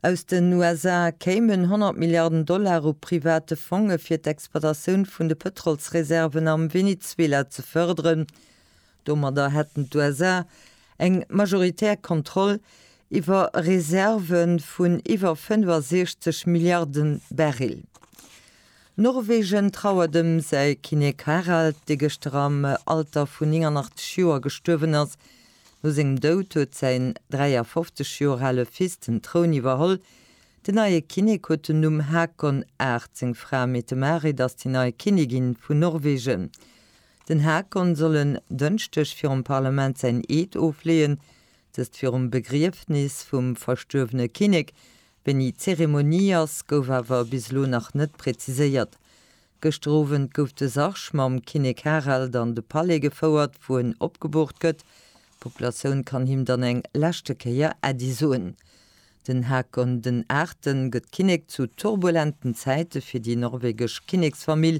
Aus den USA kéimen 100 Milliarden Dollar u private Fonge fir d'Exploitatioun vun de Pëtrolsreserven am Venezuela ze fërderen. Domadder hätten d'USA eng majoritär Kontroll iwwer Reserve vun iwwer 65 Milliarden Barrel. Norwegen trauert ëm säi Kinnek Harald, dee gëschter am Alter vun 89 Joer gestuerwen ass. No sengem Doud huet säin 53 Joer ale Fils den Troun iwwerholl. Den neie Kinnek huet den Numm Haakon VIII. Seng Fra Mette-Marit ass déi nei Kinnigin vun Norwegen. Den Haakon soll en Dënschdeg virum Parlament säin Eed ofleeën, dëst virum Begriefnis vum verstuerwene Kinnek. Wéini d'Zeremonie ass, gouf awer bis elo nach net preziséiert. Gëschter Owend gouf de Sarg mam Kinnek Harald an de Palais gefouert, wou en opgeboort gëtt. D'Populatioun kann him dann eng leschte Kéier Äddi soen. Den Haakon den Aachten gëtt Kinnek zu turbulenten Zäite fir déi norwegesch Kinneksfamill,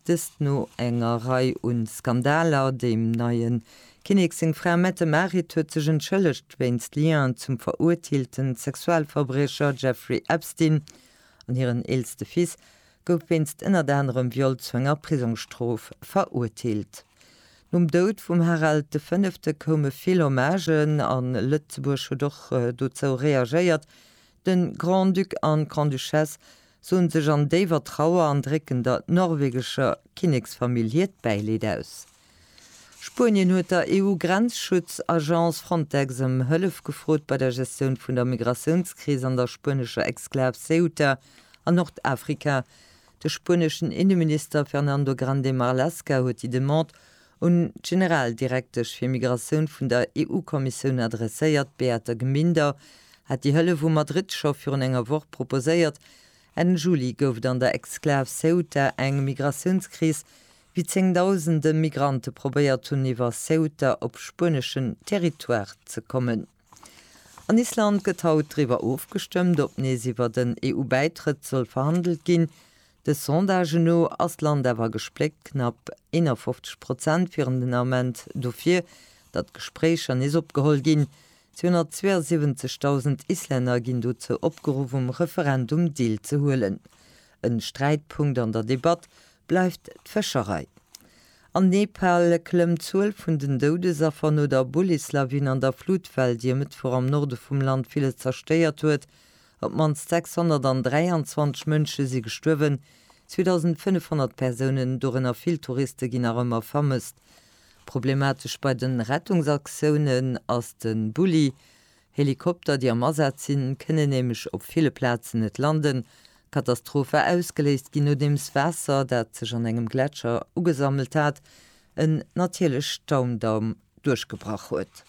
dëst no enger Rei u Skandaler. Dem neie Kinnek seng Fra Mette-Marit huet sech entschëllegt wéinst Lien zum veruerteelten Sexualverbriecher Jeffrey Epstein an hiren eelste Fils gouf wéinst ënnert anerem Viol zu enger Prisongsstrof verurteelt. Nom Doud vum Harald de Fënnefte koume vill Hommagen a Lëtzebuerg huet och dozou reagéiert. De Grand-Duc an d'Grande-Duchesse soen sech an déiwer Trauer an drécken der norwegescher Kinneksfamill hiert Bäileed aus. Spuenien huet der EU-Grenzschutz-Agence Frontex ëm Hëllef gefrot bei der Gestioun vun der Migratiounskris an der spuenescher Exklav Ceuta an Nordafrika. De spueneschen Inneminister Fernando Grande Marlaska huet déi Demande un d'Generaldirektesch fir Migratioun vun der EU-Kommissioun adresséiert. Beate Gminder hat déi Hëllef u Madrid scho virun enger Woch proposéiert. Enn Juli gouf et an der Exklav Ceuta eng Migratiounskris, wéi zéngdausende Migrante probéiert hunn iwwer Ceuta op spueneschen Territoire ze kommen. An Island gëtt haut driwwer ofgestëmmt, ob nees iwwer den EU-Bäitrëtt soll verhandelt ginn. De Sondagen no ass d'Land awer gespléckt, knapp 51 Prozent wieren den Ament dofir, datt d'Gespréicher nees opgeholl ginn. 272.000 Islänner ginn dozou opgeruff um Referendum deelzehuelen. E Sträitpunkt an der Debatt bleift d'Fëscherei. An Nepal klëmmt d'Zuel vun den Doudesaffer no der Bullis-Lawin an der Flutwell, déi e Mëttwoch am Norde vum Land villes zerstéiert huet. Op d'mannst 623 Mënsche si gestuerwen, 2.500 Persounen, dorënner vill Touriste, ginn nach ëmmer vermësst. Problematesch bei de Rettungsaktiounen ass de Bulli, Helikopter, déi am Asaz sinn, kënnen nämlech op ville Plazen net landen. D'Katastroph war ausgeléist ginn, nodeems Waasser, dat sech an engem Gletscher ugesammelt hat, en natierlech Staundamm duerchgebrach huet.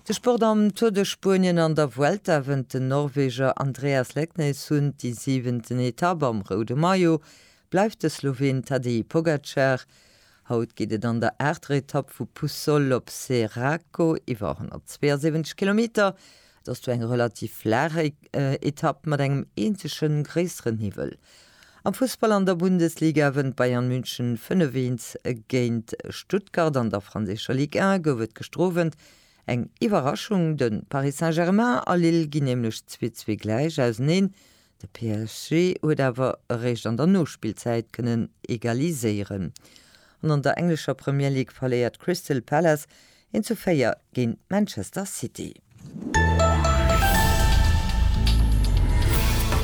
De Sport am Tour de Spuenien an der Vuelta wënnt den Norweger Andreas Leknes un déi siwenten Etapp. Am roude Maillot bleift de Sloween Tadej Pogacar. Haut geet et an der aachter Etapp vu Puçol op Ceraco iwwer 172 Kilometer. Et ass do eng relativ flaach Etapp mat engem eenzege gréisseren Hiwwel. Am Fussball an der Bundesliga wënnt Bayern München 5-1 géint Stuttgart. An der franséischer Ligue 1 gouf et gëschter Owend eng Iwwerraschung, de Paris Saint-Germain a Lille ginn nämlech 2-2 gläich auseneen. De PSG huet awer eréischt an der Nospillzäit kënnen egaliséieren an an der englescher Premier League verléiert Crystal Palace 1 zu 4 géint Manchester City.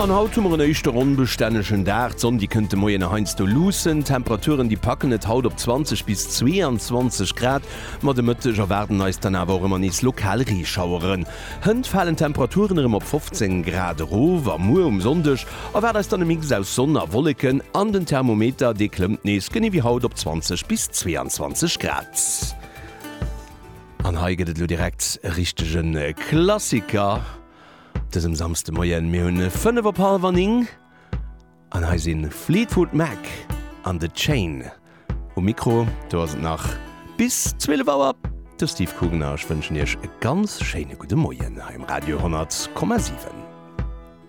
An haut hu mer en éischter onbestännegen Dag. D'Sonn, déi kënnt de Moien nach heiansdo luussen. D'Temperaturen, déi packen et haut op 20 bis 22 Grad. Ma de Mëtteg erwaarden eis dann awer och ëmmer nees lokal Reeschaueren. Hënt falen d'Temperaturen erëm op 15 Grad erof a muer um Sonndeg erwaart eis dann e Mix aus Sonn a Wolleken an den Thermometer dee klëmmt nees genee wéi haut op 20 bis 22 Grad. An hei gëtt et elo direkt e richtege Klassiker dësem Samsdemoien. Mir hunn 5 op hallwer 9. An hei sinn Fleetwood Mac an The Chain um Mikro. Do ass et nach bis 12 Auer. De Steve Coogan a ech wënschen Iech e ganz schéine gudde Moien hei um Radio 10,7.